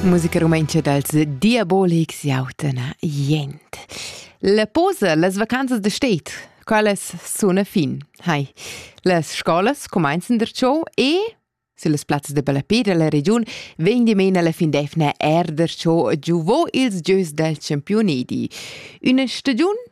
Musica rumentscha dals Diabolics jauten jent. La posa, las vacanzas de state, quelles suna fin. Hai. Las scolas comenzan der ciò e Sulle plazzas de Ballapira la regiun vegn di mena la fin d'efna er der ciò giuvò ils gieus dal Championedi. Una stagiun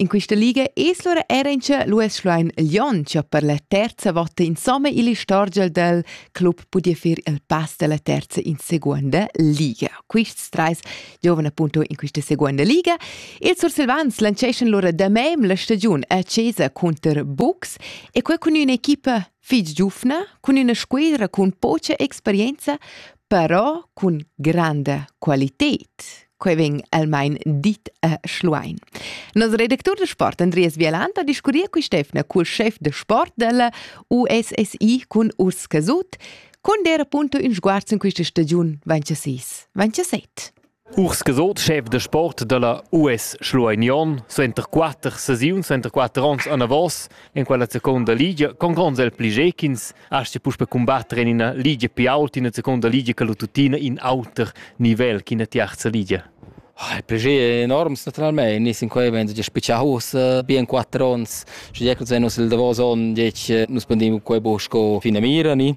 In quista liga es lura eir inchà l'US Schluein Lyon cha per la terza vota insomma il istorgia del club pudia fer il pass dalla terza in seguonda liga. Quists trais giovan appunto in quista seguonda liga. Ils sursilvans lanceschan lura damem la stagiun a Cesa counter Bucks e quel cun üna equipa fich giufna, cun üna squidra cun pocha experienza, però cun granda qualited. Quei vegn almain dit a Schluein. Nos redactur de sport, Andreas Vialant, ha discurriu cu Stefna cul chef de sport della USSI cun Urs Casut, cun der appunto in sguarz in questa stagiun 26. 27. Urs Gasot, schef da sport dalla US Schlueignion, suenter quatter sesiuns, suenter quatter onns anavos en quella seconda ligia, con gronds el pli gechins, astga puspe cumbatter en ina ligia pi ault, ina seconda ligia che lu tuttina in auter nivel ch'ina tiarza ligia. Il pli è enorm naturalmein, nus in quei vegn spicciau ussa bien quatter onns, sche jeclus vegn nus il davos onn, nus pendim quei bu sco finamira ni.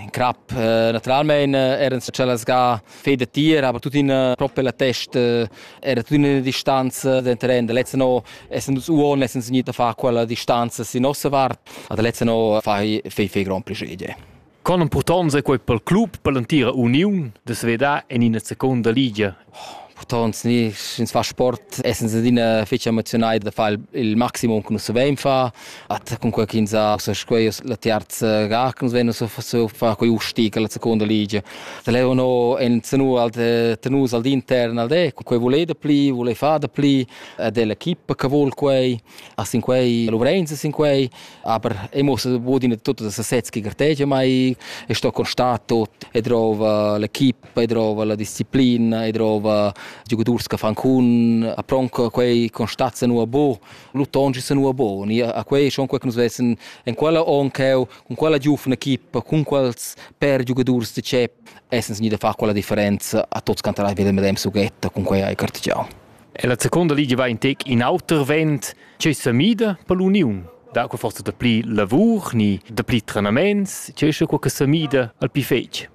In crap eh, naturalmein eh, eran tschellas ga fei da tir, aber tuttina propi la test era tuttina ina distanza da terren. Da letzte no essend uns uon essend signit a far quella distanza sin nossa vart, a da letzte no fai fei fei grand pleschier. Con impurtonza è quei pel club per l'entira uniun da svedar en ina seconda ligia Purtont ni sch'ins fa sport essens adina fetg emozionai da far il maximum che nus savein far. At cunquei ch'ins ha ussa quei la terza ga che nus vein ussa far quei usti che la seconda ligia. Da leu no enzenua tenus al intern al de, quei vole da pli, vole far da pli, ed è l'equipa che vol quei, a sin quei, Lorenz sin quei, aber e muss budin tutto das sets che gartegia mai, e sto constat tot e drova l'equipa poi drova la disciplina e drova giocaturs che fanno con a pronca quei constazza nu a bo lutongi sa nu a bo ni a quei schon quei che nus vessen en quella oncheu con quella giufna equipa con quals per giocaturs de chep essens ni da far quella differenza a tots cantarà vele medem sughetta con quei hai cartigiau E la seconda liga va in tec in auter vent che sa mida per l'union da quei forse da pli lavur ni da pli trenaments che che quei che sa mida al pli fetg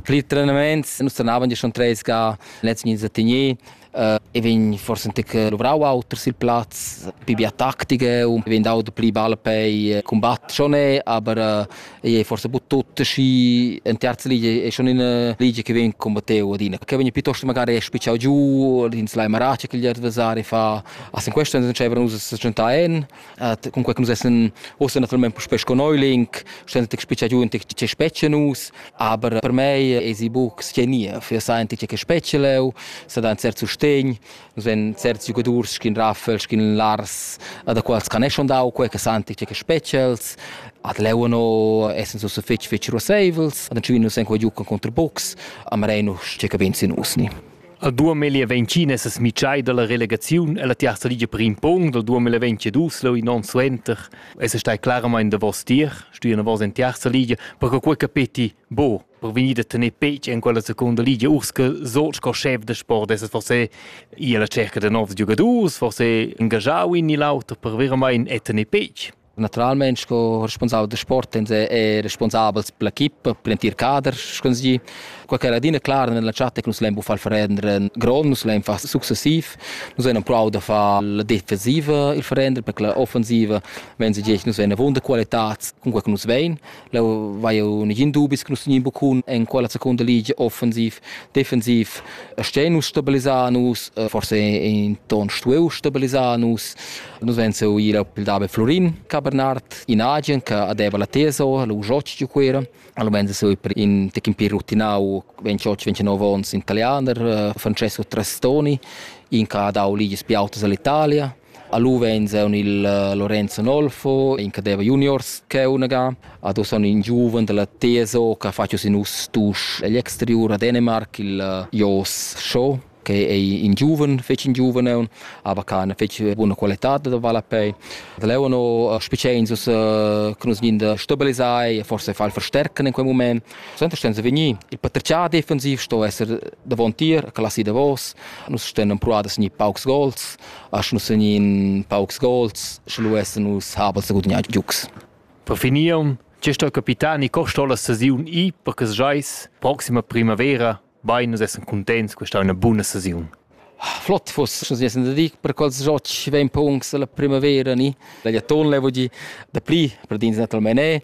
Pli trenaments, nus trenavan gia schon treis ga lezs mins a Tignier uh, e vegn forse anche luvrau auter sil plaz, più bia tattiche und vegn dau pli ball per combatt schon è, aber uh, è forse bu tutto și în terza ligie è schon in ligie che vegn combatteu adina, che vegn piuttosto magari spicciau giù, din slai marace che gli adversari fa, also in questo non c'è nus a 100 en Äh, cunquei che nus essan ussa naturalmein puspei sco neuling, sten tec speciagiu in tec che specie nus, aber per mei esi buc che nie, für sa ein tec che specie leu, sa da ein cert sustegn, nus ein certs giugadurs schin Raffel, schin Lars, da quals can schon dau quei che san tec che specials, ad leu no essen so so fetch fetch roseivels, ad entschin nus ein quei giu con contra box, am reinu che cabin sin usni. A 2020 es smiccai dalla relegaziun e la tiarza ligia per in punct dal 2022 leu in onn suenter es stai claramain davos tier stuiu davos en tiarza ligia per che quei capeti bo per vegnir da tener pec en quella seconda ligia Urske so sco chef da sport es forse ia la cerca da novs giugadurs forse engajau in ni l'auter per veramente e tener pec Naturalmein sco responsabel da sport e e responsabels per l'equipa, per l'entir cader, sco si. Quei che era adina clar nella chat che nus lein buffal verenderen grond, nus lein far successiv. Nus vein empruau da far la defensiva il verenderen, perché la offensiva, wenn sie gest, nus vein avunda qualitad cun quei che nus vein. Leu vai un negin dubis che nus tegnien bucun en quella seconda ligia offensiv, defensiv stein nus stabilisar nus, eh, forse in ton stueu stabilisar nus. Nus ven seu ir al pil dabe Florin, ca Bernard, in agen che adeva la teso, lu joci giu quera. Allo ven seu per in tecin più rutinau 28-29 ons italianer, eh, Francesco Trastoni, in che ha dau ligias più autas all'Italia. Alu vegn zun il Lorenzo Nolfo, in che deva juniors cheunaga. Ad uss han in giuven dalla TSO che ha fatg sin us tusch egl exteriur a Dänemark, il Jos Shaw che è in giuven, fece in giuven, aber kann fece buona qualità da Valapei. Da Leono speziin sus che nus gin stabilisai e forse fal verstärken in quel moment. Sempre stehen sie veni. Il potenzial defensiv sto esser davontier, classi davos. Nus stehen proadas ni paucs gols. Asch nus sun in paucs gols, sche lu essan nus habels da gudagnar giugs. Per finir, tge sto capitani ni corstola sesiun i per che schais proxima primavera bain nus essan cuntents questa è una buona sesiun. Flott fuss, nus essan da dir per quels giocs vegn puncs la primavera ni. La jaton le voglio da pli per dins naturalmente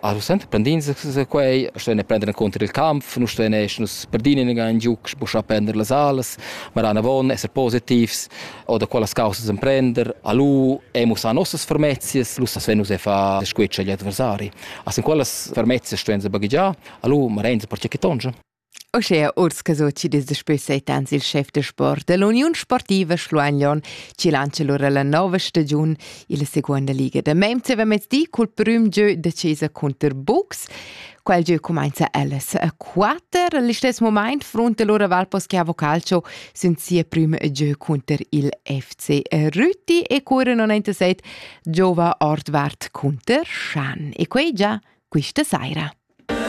Also senza prendins quei, stein a prender encunter il kampf, nu stein esch nus perdin in gan giuc, sbuschar prender las alas, ma ran avon esser positivs oder quellas causas emprender, a lu emus a nossas fermezias, lu sas venus e fa squetsch agli adversari. As in quellas fermezias stein se baghegiar, a lu ma renza per che tongia. Uschea urs che so chi dis daspö set ans il schef da sport da l'Uniun Sportiva Schluanlon chi lantscha lura la nova stagiun illa seguonda liga da mem mezdi cul prüm gieu decisa cunter Buchs. Quel gieu cumainza alles a 4. Al istess moment fronta lura Valposca Vocalcio sün sia prüma gieu cunter il FC Rüti e cura 97 giova Ordvart cunter Schan. E quei già quista saira.